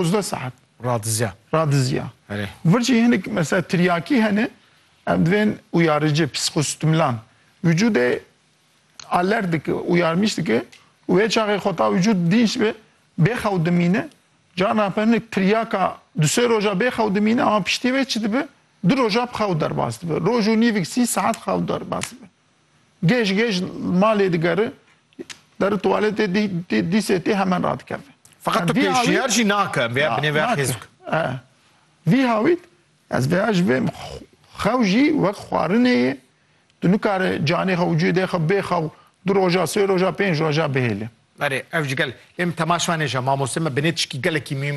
Ozdeh saet. Radizya. Radizya. Erê. Vir jî hinek mesela tiryakî hene, em divên uyarıcı, psikostimulan. Vücudê alert dike, uyarmış dike. Wê çaxê xweta vücud dînç bi, bêxew dimîne. Caran hebe hinek tiryaka du sê roja bêxew dimîne ama piştî vê çi dibe? Du roja bi xew derbas dibe. Roj û nîvik sî saet xew derbas dibe. Gêj gêj malê digere der tuwaletê dîsê tê hemen radikeve. Feqet tu pêşniyar jî nake em vêya binê veya xêz bike. Vî hawît ez vêya ji vê xew jî wek xwarinê yê tu nikare canê xwe û cûdê xwe bê xew du roja sê roja pênc roja bihêle. Berê ev ji gel lê min temaşvanê ja mamoste me binê tişkî gelekî mîm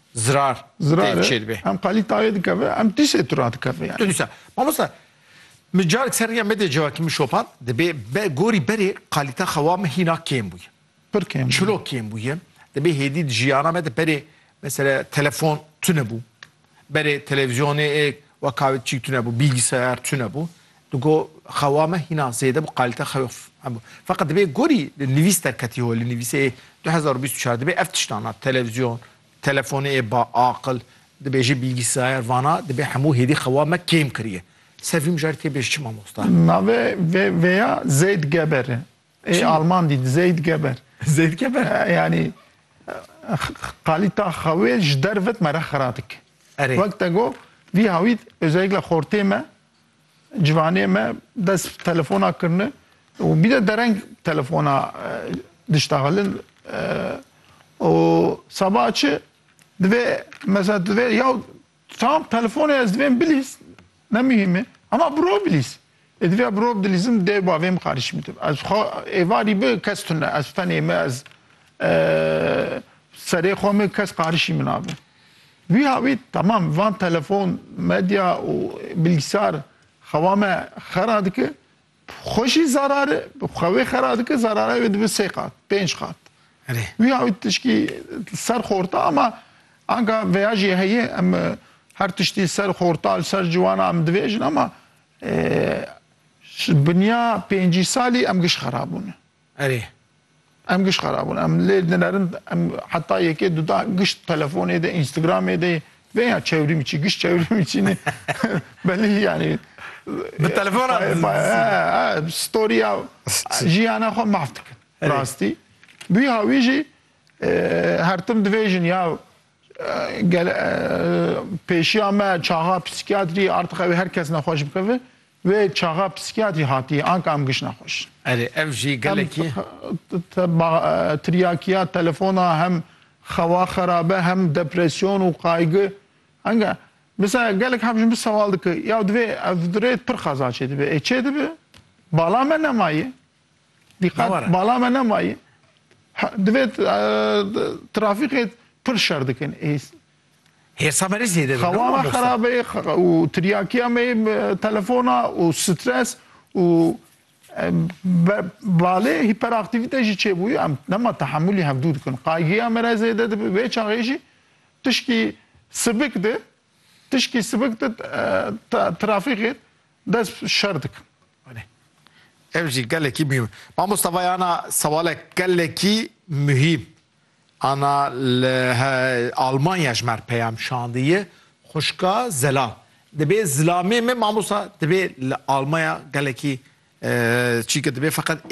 zirar tê çêdibê. Em qalî tayê dikeve, em tîsê tura dikeve yani. Duysa, mamosta, mi carek ser rêya medê cevakî min şopan, dibê be gorî berê qalîta xewa min hîna kêm bûye. Pir kêm bûye. Çilo kêm bûye. Dibê hêdî di jiyana me de berê mesela telefon tune bû. Berê televizyonê êk wa kavet çîk tune bû, bilgisayar tune bû. Tu got, Xewa me hîna zêde bû, qalîte xewê xwe hebû. Feqet divê gorî li nivîs derketî holê, nivîsê yê du hezar û bîst û çar dibê ev tiştan a, televizyon, telefonê yê ba, aqil, dibêjî bîlgîsayer, vana dibê hemû hêdî xewa me kêm kirîye. Ser vî mijarî tê bêj çi mamosta? Navê vê vêya Zeyd Geber e. Ê alman dî, Zeyd Geber. Zeyd Geber? Yanî qalîta xewê ji dervet me re xira dike. Erê. Wek te got, vî hawît, ozeyikle xortê me, Civanê me dest bi telefona kirine û bîne dereng telefona dişta xelin û seba çi divê mesela divê ya tam telefonê ez divêm bilîs ne mihîm e hema bi rov bilîs. Ê divê bi rov dilîzim dê bavê min xarîşî min tê. Ez xwe êvarî bi kes tune ez tenê me ez serê xwe min kes qarişî min abe. Wiha wî temam van telefon, medya û bilgisar xewa me xera dike. Xwe jî zarar e, xwe wê xera dike, zarara wê dibe sê qat, pênc qat. Wiha wî tişkî ser xorta ama anka veya jî heye em her tiştî li ser xorta, li ser ciwana em dibêjin ama ji binya pêncî salî em giş xera bûne. Erê. Em giş xerab bûn. Em lê dinerin. Em heta yekê duda giş telefonê de, Instagramê de vê ya çewrîmçî, giş çewrîmçî ne belê yanî. Bi telefona di. Storîya jiyana xwe mahv dikin. Rastî. Bûya wî jî her tim divê jin ya Gel pêşiya me çaxa psîkiyatrî artix ew ê her kes nexweş bikeve. Wê çaxa psîkiyatrî hatiye anka em giş nexweş in. Erê ev jî gelekî. Tiryakiya telefona hem xewa xerabe hem depresyon û qaygi anka Misa gelek hevjin bi sewal dike ya divê ev rê pir xeza çêdibe. Ê çêdibe bala me nemaye. Diqet, bala me nemayî. Divê trafîkê pir şer dikin. Hêsa me rê zêde dibin. Xewa me xerab e û tiryakiya me telefona û stres û balê hîperaktivîte jî çêbûyî. Em nema tehemûlî hevdû dikin. Qaygiya me re zêde dibe. Vê çaxê jî tişkî sibik di Tişkî sibik di trafîkê dest şer dikin. Belê. Ev jî gelekî muhîm. Mamosta vay ana sewalek gelekî muhîm. Ana li Almanya ji mer peyam şandiye xuşka Zelam. Dibê zilamê me mamosta dibê li Almanya gelekî çî ki dibê feqet